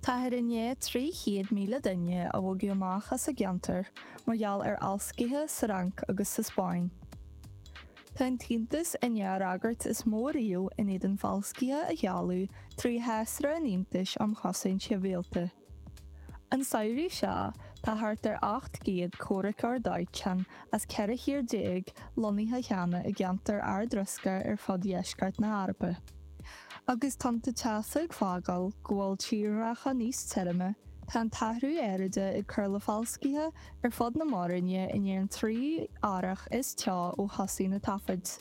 Táthar i ndiaidh 300,000 duine a bhogadh amach as a gceantair mar gheall ar fhalscaithe sa Fhrainc agus sa Spáinn. Tá an tAontas i ndiaidh an fhreagairt is mó riamh in éadan falscaithe a sheoladh trí Shásra an Aontais um Chosaint Shibhialta. An samhradh seo, tá thart ar 800 comhraiceoir dóiteáin as 14 thír lonnaithe cheana i gceantair ardriosca ar fud dheisceart na hEorpa. Agus tonnta teasa ag fágáil go bhfuil tírdhreacha níos tirime, tá an t-athrú aeráide ag cur le falscaithe ar fud na Mór-Roinne i ndiaidh an tríú earrach is teo ó thosaigh na taifid.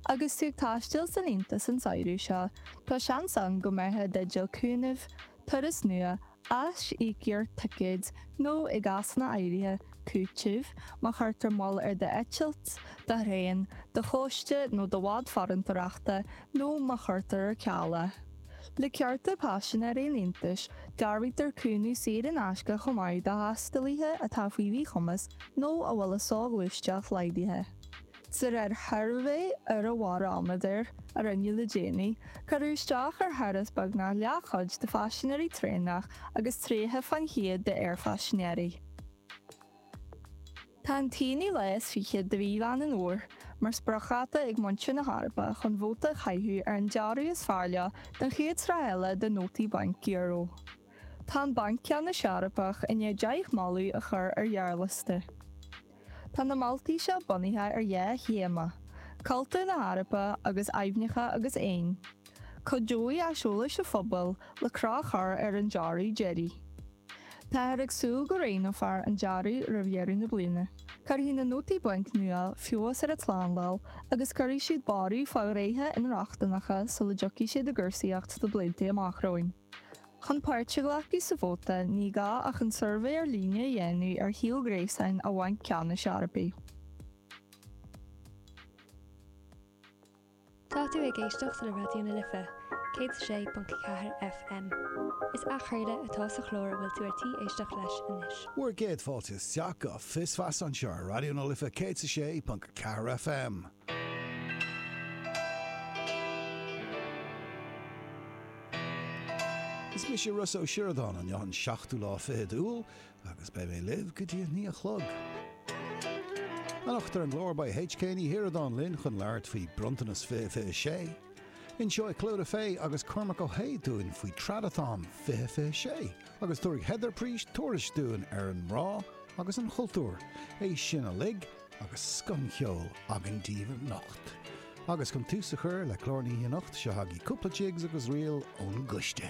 Agus tú ag taisteal san Aontas an samhradh seo, tá seans ann go mbeifeá i dteideal cúnaimh turas nua, aisíocaíocht ticéid nó, i gcásanna áirithe, cúiteamh má chuirtear moill ar d'eitilt, do thraein, do chóiste nó do bhád farantóireachta nó má chuirtear ar ceal é. Le cearta paisinéirí an Aontais, dearbhaítear cúnamh saor in aisce chomh maith do thaistealaithe atá faoi mhíchumas nó a bhfuil a soghluaisteacht laghdaithe. De réir shuirbhé Eorabharaiméadair a rinneadh le déanaí, cuireadh isteach ar thuras beagnach leathchuid de phaisinéirí traenach agus 30 faoin chéad d'aerphaisinéirí. Tá an t-aonú lá is fiche de mhí Mheán an Fhómhair mar spriocdháta ag muintir na hEorpa chun vóta a chaitheamh ar an dearadh is fearr leo don chéad sraith eile de nótaí bainc euro. Tá an Banc Ceannais Eorpach i ndiaidh 10 moladh a chur ar ghearrliosta. Tá na moltaí seo bunaithe ar dhá théama, cultúr na hEorpa agus aibhneacha agus éin. Cuideoidh aiseolas an phobail le cruth a chur ar an dearadh deiridh. Táthar ag súil go roghnófar an dearadh roimh dheireadh na bliana. Cuirfidh na nótaí bainc nua feabhas ar an tslándáil agus cuirfidh siad borradh fá ghnéithe inrochtaineachta sula dtiocfaidh siad i gcúrsaíocht sna blianta amach romhainn. Chun páirt a ghlacadh sa vóta, ní gá ach an suirbhé ar líne a dhéanamh ar shuíomh gréasáin an Bhainc Ceannais Eorpaigh. Tá tú ag éisteacht le Raidió na Life, 106.4 FM. Is athchraoladh atá sa chlár a bhfuil tú ar tí éisteacht leis anois. Bhur gcéad fáilte isteach go Fios Feasa anseo ar Raidió na Life 106.4 FM. Is mise Rossa Ó Sioradáin, inniu an seachtú lá fichead d'Iúil agus beidh mé libh go dtí a naoi a chlog. Anocht ar an gclár beidh HK Ní Shioradáin linn chun labhairt faoi Bronntanas 2026. Inseoidh Clodagh Fay agus Cormac Ó hAodha dúinn faoi Tradathon 2026 agus tabharfaidh Heather Preach tuairisc dúinn ar an ngrá agus an chultúr. É sin uilig agus scoth cheol againn daoibh anocht. Agus chun tús a chur le clár na hoíche anocht, seo chugaibh cúpla jigs agus ríl ón gcoiste.